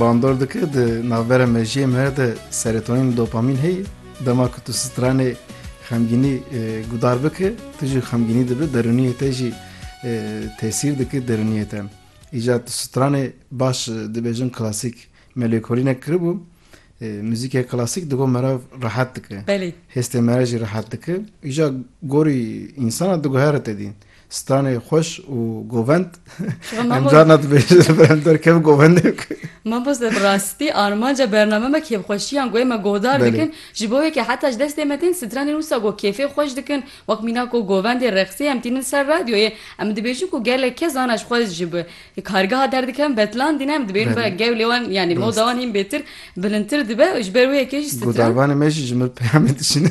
bandor dike di navbera mejiyê me de serotonin dopamîn heye dema ku tu stranê xemgînî e, gudar bike tu jî xemgînî dibe derûniyê te jî e, tesîr dike derûniyê te îca tu stranê baş e, dibêjin klasîk melêkolînek kiribû e, muzîkê klasîk digo merav rehet dike belê hêstê me re jî rehet dike îja gorî însana diguhere te dîn Stranê xweş û govend em carna dibêjin berem derkev govendê ku. Mamoste bi rastî armanca bername me kêfxweşiyan ku ême guhdar dikin ji bo wê ke heta ji destê me tên stranên wisa ku kêfê xweş dikin wek mîna ku govendê reqsê em tînin ser radyoyê em dibêjin ku gelek kes ana ji xwe ji bi kargeha derdikevin betlandîne em dibêjin belê gewlê wan yanî moda wan hîn bêtir bilindtir dibe û ji ber wê yekê jî stran. Guhdarvanê me jî ji mir peyamê dişîne.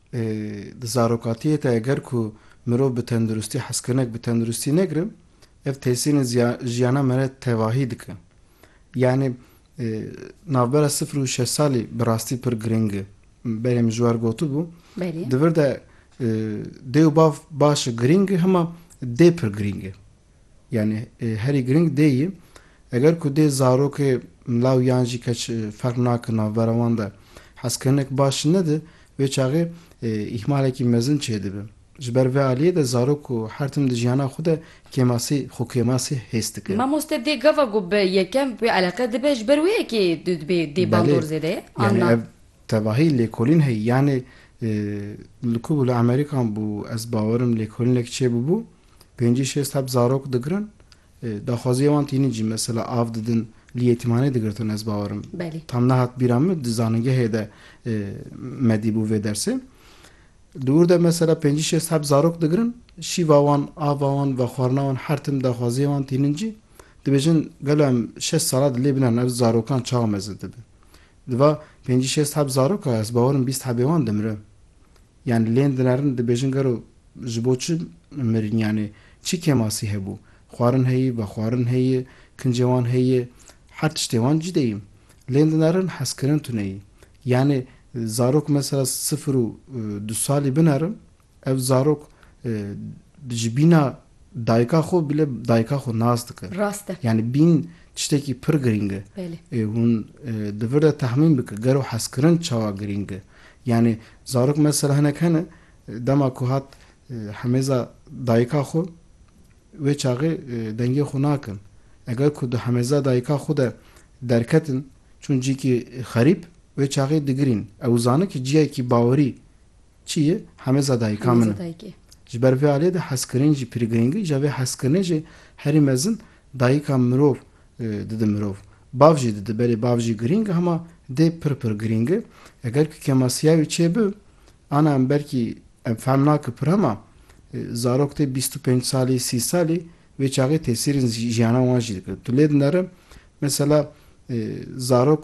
Lê di zarokatiyê de eger ku mirov bi tenduristî hezkirinek bi tenduristî negirin ev têsînê jiyana me re tevahî dike. Yanî navbera sifir û şeş salî bi rastî pir girîng e. Berê min ji war gotibû di vir de dê û bav baş e girîng e hima dê pir girîng e. Yanî herî giring dê yî. Eger ku dê zarokê law yan jî keç ferq nake navbera wan de hezkirinek baş nede, wê çaxê îhmalekî mezin çêdibe. Ji ber vê aliyê de zarok ku her tim di jiyana xwe de kêmasî xwekêmasî hês dike. Mamoste dê gava ku bi yekem wê eleqe dibe ji ber wê yekê dibe dê bandor zêde ye an na? Belê. Yanî ev tevahî lêkolîn heye. Yanî li ku bû li Amerîkan bû ez bawer im lêkolînek çêbûbû. Pêncî şêst heb zarok digirin, daxwaziyê wan tînin jî mesela av didin li yetîmhanê digirtin ez bawer im. Belê. Tam nehat bîra min di zanîngehê de me dîbû vê dersê. Di wir de mesela pêncî şêst heb zarok digirin, şîva wan, ava wan, vexwarina wan her tim daxwaziyê wan tînin cî. Dibêjin gelo em şeş sala di lê binarin ev zarokan çawa mezin dibe. Di va pêncî şêst heb zaroka ez bawer im bîst hebê wan dimire. Yan lên dinarin dibêjin gero ji bo çi mirin yanê çi kêmasî hebû? Xwarin heye, vexwarin heye, kincê wan heye, her tiştê wan cide yî. Lên dinarin hezkirin tune yî. Yanê zarok mesela sifir û du salî binarin, ev zarok ji bîna Dayika xwe bile dayika xwe nas dike. Rast e. Yanî bîn tiştekî pir girîng e. Belê. Ê hûn di vir de tehmîn bike gero hezkirin çawa girîng e. Yanî zarok mesela hinek hene dema ku hat hemêza dayika xwe wê çaxê dengê xwe nakin. Eger ku di hemêza dayika xwe de derketin çûn cîkî xerîb wê çaxê digirîn. Ew zane ki ciyayekî bawerî Çi ye? Hemeza dayika min e. Ji ber vê aliyê de hezkirinê jî pir girîng e. Îja vê hezkirinê jî herî mezin dayika mirov dide mirov. Bav jî dide belê bav jî girîng e hema dê pir pir girîng e. Eger ku kemasîya wî çêbi ana em belkî em fehm nake pir hema zarok tê bîst û pênc salî sî salî wê çaxê tesîrên jî jîyana wan jî dike. Tu lê dinere mesela zarok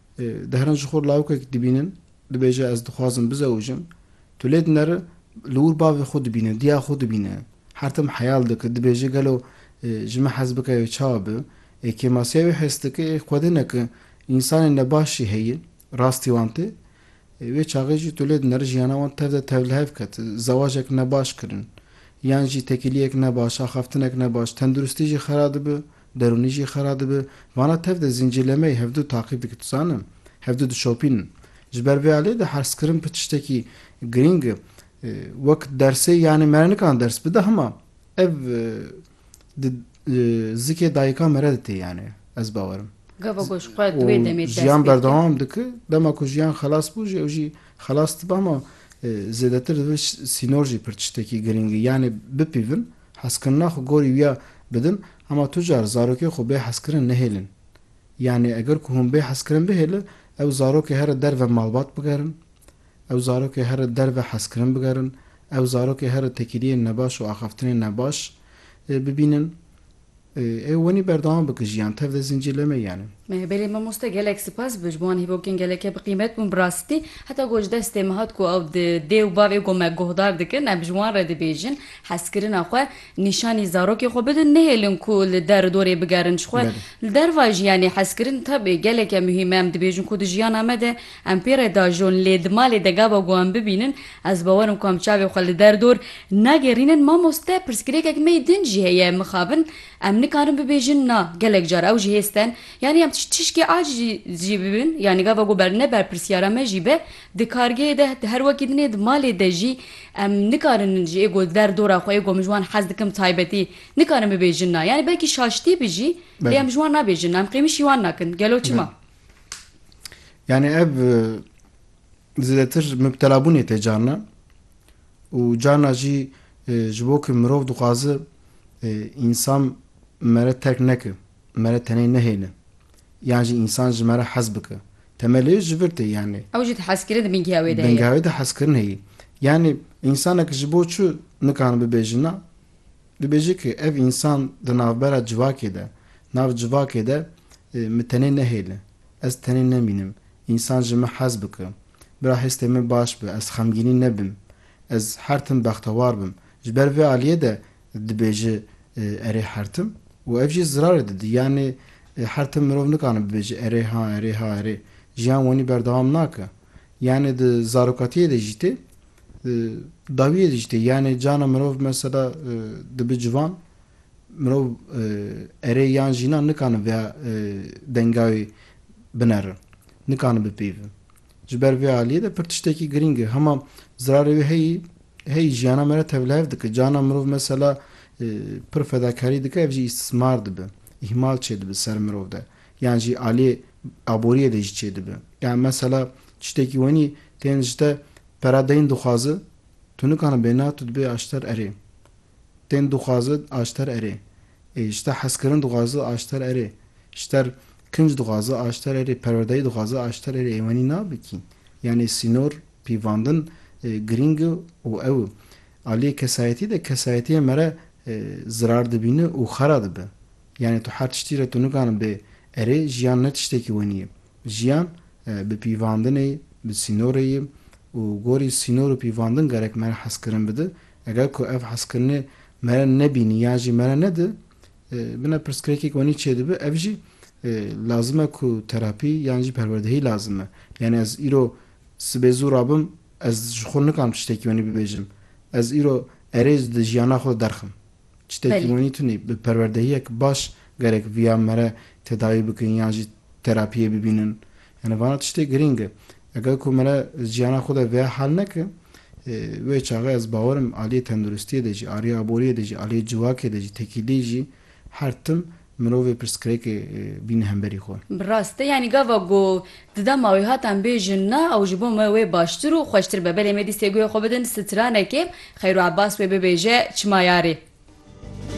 Dehran ji xwe lawikek dibînin, dibêje ez dixwazim bizewijim. Tu lê dineri li wir bavê xwe dibîne, diya xwe dibîne. Her tim heyal dike, dibêje gelo ji min hez bike ê çawa be. Ê kêmasiya wê hêz dike, ê xwedine ku însanên nebaş jî heye, rastî wan tê. Wê çaxê jî tu lê dineri jiyana wan tev de tev li hev ket. Zewacek nebaş kirin, yan jî tekîliyek nebaş, axaftinek nebaş, tenduristî jî xera dibe. Derûnî jî xera dibe. Vana tev de zîncîrlemeyê hevdu taqîb dike. Tu zanin hevdu dişopînin. Ji ber vê aliyê de herzkirin pir tiştekî girîng e. Wek dersê yanî me re nikana ders bide hema ev di zikê dayikan me re de tê yanî ez bawer im. Gava ku ji xwe di wê demê dest pê dike. Û jiyan berdewam dike. Dema ku jiyan xelas bû jî ew jî xelas dibe hema zêdetir dibe sînor jî pir tiştekî girîng e. Yanî bipîvin. Hezkirina xwe gorî wî ya bidin, hema tu car zarokê xwe bê hezkirin nehêlin. Yanî eger ku hûn bê hezkirin bihêlin, ew zarokê here derve malbat bigerin, ew zarokê here derve hezkirin bigerin, ew zarokê here tekîliyên nebaş û axaftinên nebaş bibînin. Ew wenî berdewam bike jiyan tev de zincîr lê meyane. Belê mamoste gelek sipas bi ji bo wan hîvokên gelekê bi qîmet bûn bi rastî heta ku ji destê min hat ku ew di dê û bavê ku me guhdar dikin em ji wan re dibêjin hezkirina xwe nîşanî zarokê xwe bidin nehêlin ku li der û dorê bigerin ji xwe li derva jiyanê hezkirin tabê geleke muhîm e em dibêjin ku di jiyana me de Em pê re diajon lê di malê de gava ku em bibînin ez bawer im ku em çavê xwe li der dor nagêrînin Mamoste pirsgirêkek mey din jî heye mixabin em nikarin bibêjin na gelek car ew jî hê sten yanî em tiştişkê aciz jî bibin yanî gava ku ne berpirsyara me jî be di kargeyê de di her wekî din ê di malê de jî em nikarin ji ê ku di der dora xwe ê ku em ji wan hez dikim taybetî nikarin bibêjin na yanî belkî şaştî bi jî lê em ji wan nabêjin na em qêmî şî wan nakin gelo çima. Yani ev zêdetir mibtelabûnê tê carna û carna jî ji bo ku mirov dixwaze însan me re terk neke, me re tenê nehêle yan jî însan ji me re hez bike. Temelê ji vir tê yani. Ew jî hezkirin di bingeha wê de heye. Bingeha wê de hezkirin heye. Yani însanek ji bo çi nikare bibe jina? Dibêje ke ev însan di navbera civakê de, nav civakê de mi tenê nehêle, ez tenê nemînim, însan ji min hez bike, bira hêstê min baş be, ez xemgînî nebim, ez her tim bextewar bim. Ji ber vê aliyê de dibêje erê her tim û ev jî zirarê dide. Yanê her tim mirov nikane bibêje erê ha, erê ha, erê. Jiyan wenî berdewam nake. Yanê di zarokatiyê de jî tê, di dawiyê de jî tê. Yanê cana mirov mesela dibi civan, mirov erê yan jîna nikane vêya dengawê binere, nikane bipeyve. Ji ber vê aliyê de pir tiştekî girîng e. Hema zirarê wê heyî, heyî jiyana me re tevlihev dike. Cana mirov mesela pir fedakarî dike ev jî îstismar dibe, îhmal çêdibe ser mirov de. yan jî aliyê aboriyê de jî çêdibe. Yan mesela tiştekî wenî tên ji te pere deyn dixwaze, tu nikane bê na, tu dibê aşter erê. Tên dixwaze, aşter erê. Ê ji te hezkirin dixwaze, aşter erê. Ji te kinc dixwaze, aşter erê. Perwerdeyî dixwaze, aşter erê. Ê wenî nabe kî. Yanê sînor, pîvandin girîng e û ew e. Aliyê kesayetî de kesayetiyê mere zirar dibîne û xera dibe. Yanî tu her tiştî re tu nikarin bê erê, jiyan ne tiştekî wenî ye. Jiyan bi pîvandinê ye, bi sînorê ye û gorî sînor û pîvandin gerek me re hezkirin bide. Eger ku ev hezkirinê me re nebînî yan jî me re nede, bina pirsgirêkek wenî çê dibe, ev jî lazim e ku terapî yan jî perwerdehî lazim e. Yanî ez îro sibê zû rabim, ez ji xwe nikarim tiştekî wenî bibêjim. Ez îro erê di jiyana xwe de derxim. Çitê ki wenî tunî bi perwerdehiyek baş gerek viya mere tedawî bikin yan jî terapiyê bibînin. Yanî vana tiştê girîng e. Eger ku mere jiyana xwe de viya hal neke, wê çaxê ez bawerim aliyê tenduristiyê de jî, aliyê aboriyê de jî, aliyê civakê de jî, tekîlî jî her tim Mirovê pirsgirêkê bîne hemberî xwe. Bi rast e yanî gava ku di dema wê hatan bêjin na ew ji bo me wê baştir û xweştir be. Belê me dîstê guhê xwe bidin stranekê xeyr û ebas wê bibêje çima yarê.